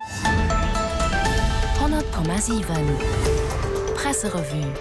100,7 Presserevue.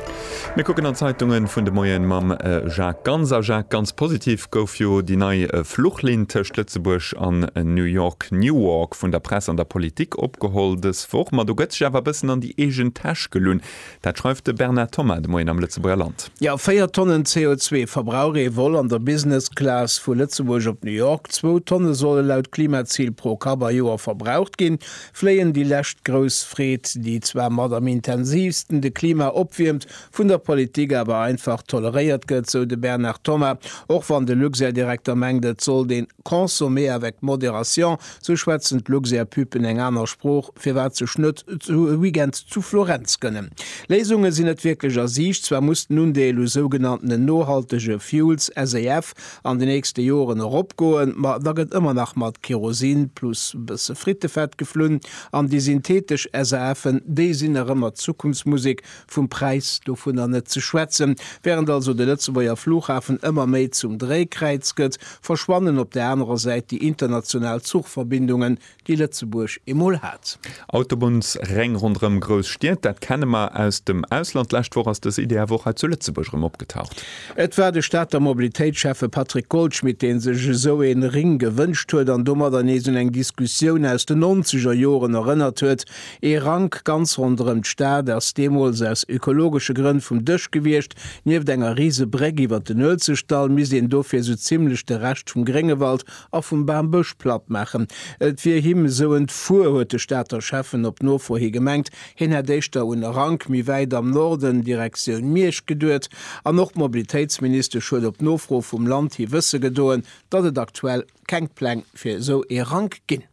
Mir kucken an d'Zeitungen vun de Moien mam Jacques Ganz. A Jacques, ganz positiv gouf jo déi nei Fluchlinn tëscht Lëtzebuerg an New York, Newark, vun der Press an der Politik opgeholl dës Woch. Ma do gëtt sech awer e bëssen an déi eegen Täsch gelunn. Dat schreift de Bernard Thomas de Moien am Lëtzebuerger Land. Jo, 4 Tonnen CO2 verbrauch ee Vol an der Business Class vu Lëtzebuerg op New York. Zwou Tonne solle laut Klimazil pro Kapp a Joer verbraucht ginn. Fléien, déi lescht grouss Freed, déi zwar mat am intensiivsten de Klima opwiermt, vun der Politik awer einfach toleréiert gëtt, sou de Bernard Thomas, och wann de Luxair-Direkter mengt, et sollt een. Consommer avec modération, sou schwätzen d'Luxair-Püpen eng aner Sprooch, firwat sech net zu e Weekend zu Florenz gënnen. Léisunge sinn net wierklech a Siicht, zwar muss den Undeel u sougenanntene nohaltege Fuels, SAF, an de nächste Joren eropgoen, ma da gëtt ëmmer nach mat Kerosin plus e bësse Frittefett geflunn, an déi synthetesch SAFen, déi sinn nach ëmmer d'Zukunftsmusek, Vum Präis dovunner net ze schwätzen. Während also de Lëtzebuerger Flughafen ëmmer méi zum Dréikräiz gëtt, verschwannen op der anerer Säit déi international Zuchverbindungen, déi Lëtzebuerg emol hat. Autobunnsréng ronderëm grouss Stied, dat kenne mer aus dem Ausland. D'lescht Woch ass dës Idee awer och hei zu Lëtzebuerg erëm opgetaucht. Et war de Stater Mobilitéitsschäffe Patrick Goldschmidt, dee sech esou ee Ring gewënscht huet an domadder nees un eng Diskussioun aus de Nonzegerjoren erënnert huet, Ee Rank ganz ronderëm d'Stad ass deemools aus ökologesche Grënn vum Dësch gewiescht. Nieft enger riise Bréck iwwer den Uelzechtdall misst een dofir esou zimmlech de Rescht vum Gréngewald a vum Bambësch platt maachen. Et wier him esou entfuer, huet de Stater Schäffen op Nofro hi gemengt. Hien hätt éischter un e Rank méi wäit am Norden, Direktioun Miersch, geduet. An och d'Mobilitéitsministesch huet op Nofro vum Land hi wësse gedoen, datt et aktuell keng Pläng fir esou ee Rank ginn.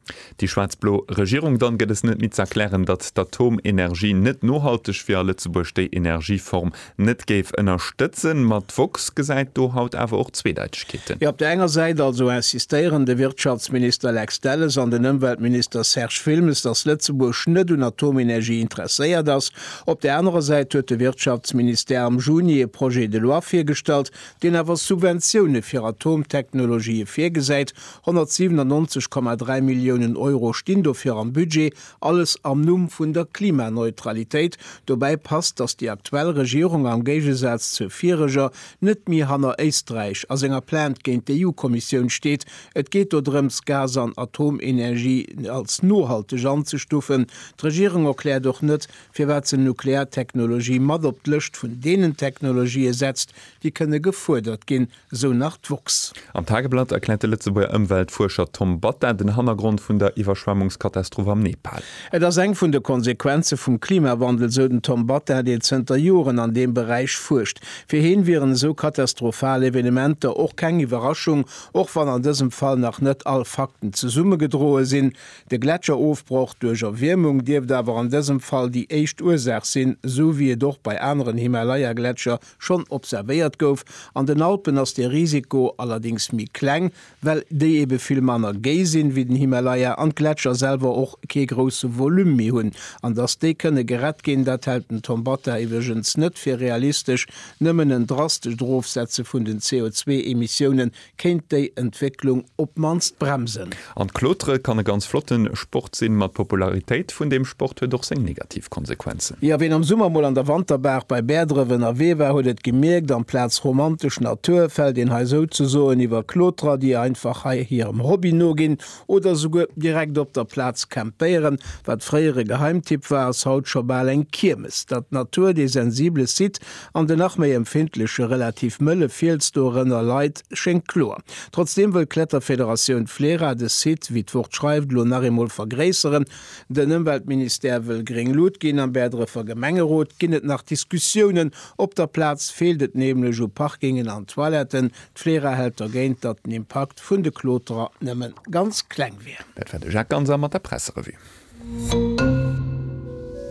Déi schwaarz-blo Regierung dann gëtt es net méi z'erklären, datt d'Atomenergie net nohalteg wier a Lëtzebuerg déi Energieform net géif ënnerstëtzen. Ma d'woxx gesäit do haut awer och Zweedeitechkeeten. Jo, op der enger Säit also insistéieren de Wirtschaftsminister Lex Delles an den Ëmweltminister Serge Wilmes, datt Lëtzebuerg net un Atomenergie interesséiert ass. Op der anerer Säit huet de Wirtschaftsministère am Juni ee Projet de loi virgestallt, deen awer Subventioune fir Atomtechnologië virgesäit, 197,3 Milliounen Euro stinn dofir am Budget, alles am Numm vun der Klimaneutralitéit. Dobäi passt, datt déi aktuell Regierung, am Géigesaz zur vireger, net méi hanner Éisträich a senger Plainte géint d'EU-Kommissioun steet. Et geet do drëms, Gas an Atomenergie als nohalteg anzestufen. D'Regierung erkläert och net, firwat se Nukleartechnologie mat op d'Lëscht vun deenen Technologië setzt, déi kënne gefuerdert ginn, esou nach d'woxx. Am Tageblatt erkläert de Lëtzebuerger Ëmweltfuerscher Tom Batta den Hannergrond vun der Iwwerschwemmungskatastroph am Nepal. Et ass eng vun de Konsequenze vum Klimawandel, esou den Tom Batta, deen zënter Joren an deem Beräich fuerscht. Fir heen wieren esou katastrophal Evenementer och keng Iwwerraschung, och wann an dësem Fall nach net all Fakten zesummegedroe sinn. De Gletscherofbroch duerch Erwiermung dierft awer an dësem Fall déi éischt Ursaach sinn, esou wéi et och bei aneren Himalaya-Gletscher schonn observéiert gouf. An den Alpen ass dee Risiko allerdéngs méi kleng, well déi ebe vill manner géi sinn, wéi den Himalaya, an d'Gletscher selwer och kee grousse Volume méi hunn. An datt déi kënne gerett ginn, dat hält den Tom Bata iwwregens net fir realistesch. Nëmmen en drastescht Erofsetze vun den CO2-Emissioune kéint déi Entwécklung op d'mannst bremsen. An d'Klotere kann e ganz flotte Sport sinn, ma d'Popularitéit vun deem Sport huet och seng negativ Konsequenzen. Jo, ween am Summer mol an der Wanterbaach bei Bäerdref ënnerwee war, huet et gemierkt, amplaz romantesch Natur fält een hei souzesoen iwwer Kloterer, déi einfach hei hirem Hobby noginn oder souguer direkt op der Plaz campéieren. Wat fréier e Geheimtipp war, ass haut scho bal eng Kiermes. Datt d'Natur dee sensible Site An den nach méi empfindleche relativ mëlle Fiels dorënner leit, schéngt kloer. Trotzdeem wëll d'Kletterfederatioun Flera de Site, wéi d'Wort schreift, elo nach eemol vergréisseren. Den Ëmweltministère wëll gréng Lut ginn. Am Bäerdrefer Gemengerot ginn et nach Diskussiounen. Op der Plaz feelt et nämlech u Parkingen an Toiletten. D'Flera hält dergéint, datt den Impakt vun de Kloterer nëmmen ganz kleng wier. Dat war de Jacques Ganser mat der Presserevue.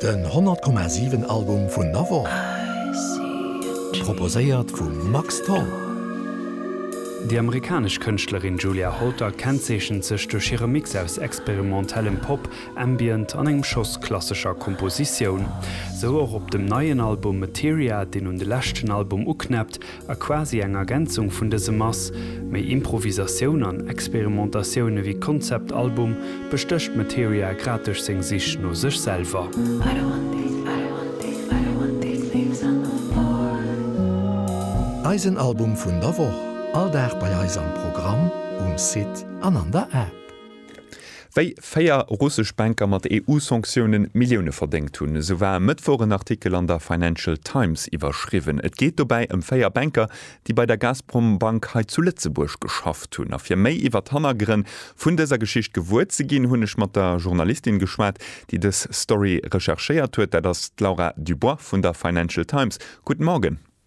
Den 100,7 Album vun Navon, proposéiert vum Max Tholl. Déi amerikanesch Kënschtlerin Julia Holter kennzeechent sech duerch hire Mix aus experimentellem Pop, Ambient an engem Schoss klassescher Kompositioun. Sou och op dem neien Album Materia, deen un de leschten Album uknäppt, A quasi eng Ergänzung vun dësem ass, méi Improvisatioun an Experimentatioun ewéi Konzeptalbum, bestécht Materia grad duerch seng Sich no sech selwer. Eisen Album vun der Woch, all Dag bei eis am Programm, um Site an an der App. Wéi véier russesch Banker mat EU-Sanktioune Millioune verdéngt hunn, esou war e Mëttwoch en Artikel an der Financial Times iwwerschriwwen. Et geet dobäi ëm véier Banker, déi bei der Gazprom Bank hei zu Lëtzebuerg geschafft hunn. A fir méi iwwer d'Hannergrënn vun dëser Geschicht gewuer ze ginn, hunn ech mat der Journalistin geschwat, déi dës Story recherchéiert huet. Dat ass d'Laura Dubois vun der Financial Times. Guten Morgen.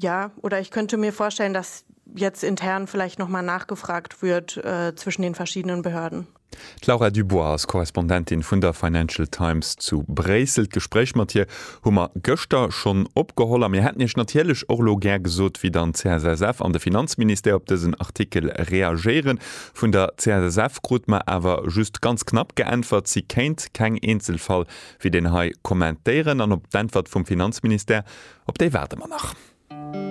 Ja, oder ich könnte mir vorstellen, dass jetzt intern vielleicht noch mal nachgefragt wird äh, zwischen den verschiedenen Behörden. D'Laura Dubois ass Korrespondentin vun der Financial Times zu Bréissel. D'Gespréich mat hir hu mer gëschter schonn opgeholl a mir hätten Iech natierlech och elo gär gesot, wéi dann d'CSSF an de Finanzministère op dësen Artikel reagéieren. Vun der CSSF krut mer awer just ganz knapp geäntwert, si kéint keng Eenzelfall Wéi deen hei kommentéieren an op d'Äntwert vum Finanzministère, op déi waarde mer nach.